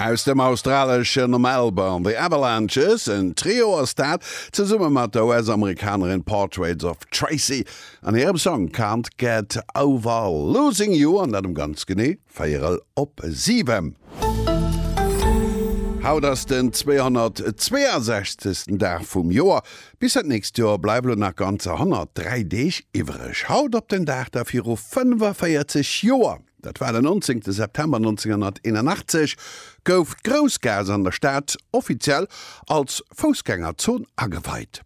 Aus dem australeschen Melbourne, The Avalanches, en Trio ass dat, zesumme mat der US-Amerikanerin Portraits of Tracy an hirem Song Can't Get Over Losing You, an dat um ganz genee véierel op siwen. Haut ass den 262. Dag vum Joer. Bis dat nächst Joer bleiwe lo nach ganzer 103 Deeg iwwereg. Haut op den Dag da viru 45 Joer. Dat war den 19 September 1981, gouf d'Groussgaass an der Stad offiziell als Foussgängerzon ageweit.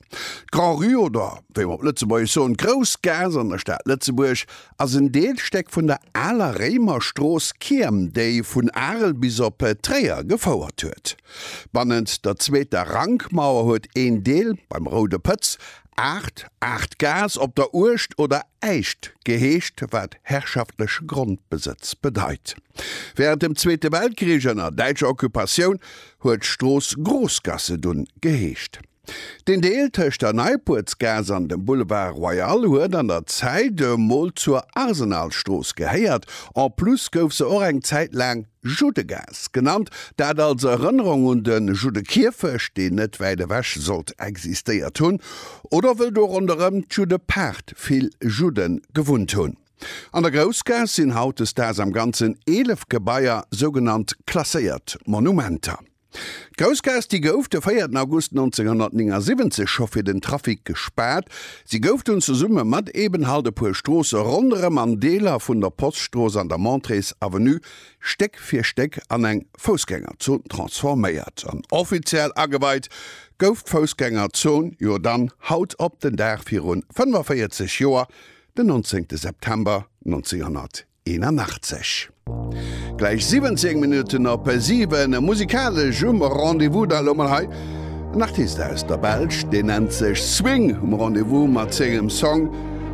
D'Grand'Rue oder wéi mer op Lëtzebuergesch soen, d'Groussgaass an der Stad Lëtzebuerg ass en Deelstéck vun der aler Réimerstrooss Kiirm, déi vun Arel bis op Tréier gefouert huet. Bannent der zweeter Rankmauer huet een Deel beim Roude Pëtz Aacht, Aachtgaass op der Uecht oder Äischt geheescht, wat herrschaftleche Grondbesëtz bedeit. Wärend dem Zweete Weltkrich ënner däitscher Occupatioun huet d'Strooss Großgasse dunn geheescht. Den Deel tëscht der Neipuertsgaass an dem Boulevard Royal huet an der Zäit emol zur Arsenalstrooss gehéiert, en plus gouf se och eng Zäit laang Juddegaass genannt, dat als Erënnerung un de Juddekierfecht, deen net wäit ewech sollt existéiert hunn, oder wëll do ronderëm d'Juddepaart vill Judde gewunnt hunn. An der Groussgaass sinn hautdesdaags am Ganzen 11 Gebaier, sougenannt klasséiert Monumenter. D'Groussgaass, déi gouf de 4 August 1979 scho fir den Trafic gespaart. Si gouf dunn zesumme mat eben halt e puer Stroosse ronderëm an Deeler vun der Poststrooss an der Montrées Avenue Stéck fir Stéck an eng Foussgängerzon transforméiert. An offiziell ageweit gouf d'Foussgängerzon jo dann haut op den Dag virun 45 Joer, den 19 September 1979. 81. Gläich 17 Minutten op 7. Musikalesch um Rendez-vous da elo mol hei en Artist aus der Belsch, deen nennt sech Swing, um Rendez-vous mat sengem Song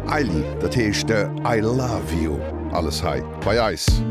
Aili, dat heescht I Love You. Alles hei bei eis.